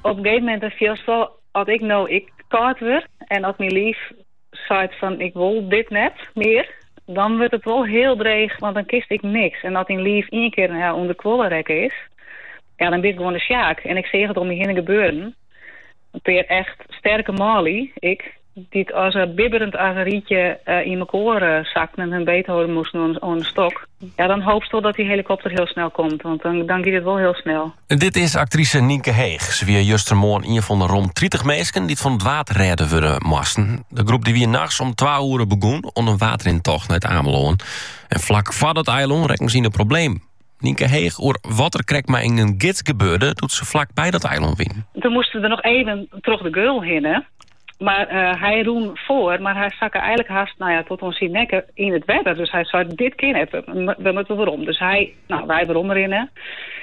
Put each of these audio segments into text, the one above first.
Op in gegeven moment dan fielst wol as ik no ek kâld wurd en as myn liif seit fan ik wol dit net mear, dan wurdt it wol hiel dreech want dan kinst ek niks en as dyn liif ien kear ûnderkuolle rekke is, ja dan bist gewoan de Sjaak en ik seach it om my hinne gebeuren. In pear echt sterke manlju ek, dy't sa bibberjend as in reidsje yn mekoar sakten en har beethâlde moasten oan in stok. Ja, dan hoopst wol dat dy helikopter hiel snel komt, want dan giet it wol hiel snel. Dit is aktrise Nynke Heeg. Se wie justermoarn ien fan de rom tritich minsken dy't fan it waad rêden wurde moasten. De groep dy wie nachts om twa oere begûn oan in waadrintocht nei It Amelân. En flak foar dat eilân rekken se yn de problemen. Nynke Heeg oer wat der krekt mei in gids gebeurde doe't se flak by dat eilân wienen. Toen moasten we der noch efkes troch de geul hinne, mar eh, hy rûn foar, mar hy sakke einlik hast nou ja, tot oan syn nekke yn it wetter. Dus hy sei, dit kin net, we moatte werom. Dus hy, nou, wy werom rinne.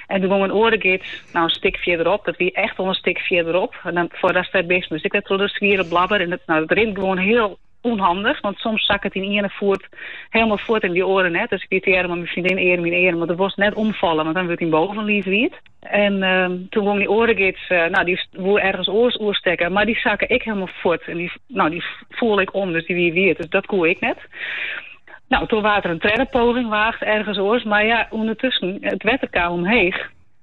En toen gong in oare gids, nou, een stik fierderop, dat wie echt al een stik fierderop. En dan, foar dat stik bist moast ik wer troch de zwiere blabber. En it, nou, it rint gewoan hiel ûnhandich, want soms sakket dyn iene foet hielendal fuort en dy oare net. Dus ik wie tige earm yn earm mei myn freondin earm yn earm, want do wolst net omfalle, want dan wurdt dyn bovenliif wiet. En ehm, toen gong dy oare gids, eh, nou dy woe ergens oors oerstekken, mar dy sakke ek hielendal fuort. En dy, nou dy foel ek om, dus dy wie wiet, dus dat koe ek net. Nou, toen waard der in tredde poging weage ergens oors, mar ja, ûndertusken, it wetter kaam omheech.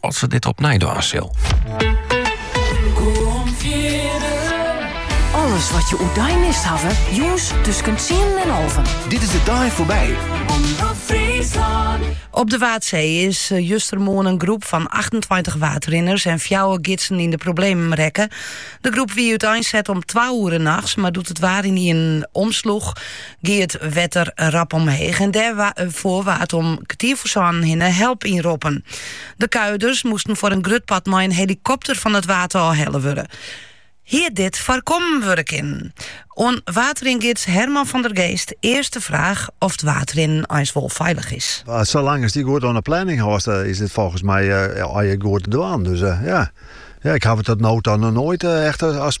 Of se dit opnij dwaan sil. Alles wat jo oerdei mist hawwe, jûns tusken tsienen en alven. Dit is de dei foarby. Op de Waadsee is eh, justermoarn in groep fan 28 waadrinners en fjouwer gidsen yn de problemen rekke. De groep wie útein set om twa oere nachts, mar doe't it waar ynienen omsloech, gie it wetter rap omheech en dêrom waard om kertier foar sânen hinne help ynroppen. De kuierders moesten foar in grut part mei in helikopter fan it waad ôf helle wurde. Hie dit foarkommen wurde kinnen? Oan waadringids Herman van der Geest earst de fraach oft it waadrinnen eins wol feilich is. Salang asto dy goed oan de planning hâldst, is it folgens my goed te dwaan. Dus ja, ik haw it tot no toe noch noait echt as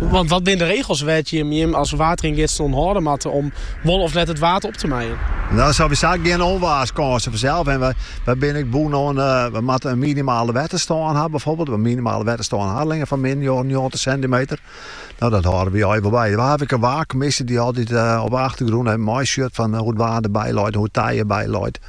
Want wat binne de regels wêr't je jim as waadringids oan hâlde moatte om wol of net it waad op te meien? Nou, absolút gjin ûnwaarskânsen fansels en we binne ek bûn oan, we moatte in minimale wetterstân ha byfoarbyld, in minimale wetterstân Harlingen fan min njoggentich sintimeter. Nou, dat hâlde we eins wol by. We hawwe ek in waarkommisje dy't altyd op de achtergrûn meisjocht fan hoe it waar der by leit, hoe it tij der by leit.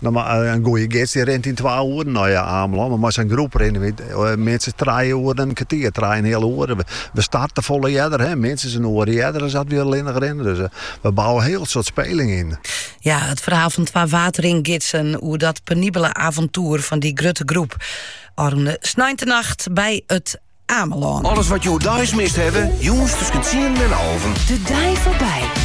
In goeie gids dy rint yn twa oeren nei Amelân. Mar mei sa'n groep rinne wy minstens trije oeren en in kertier. Trije en in heal oer. We starten folle earder, minstens in oer earder as dat we allinnich rinnen. Dus we bouwe in hiel soad speling yn. Ja, it ferhaal fan twa waadringidsen oer dat penibele avontoer fan dy grutte groep ôfrûne sneintenacht by it Amelân. Alles wat jo deis mist hawwe, jûns tusken tsienen en alven. De dei foarby.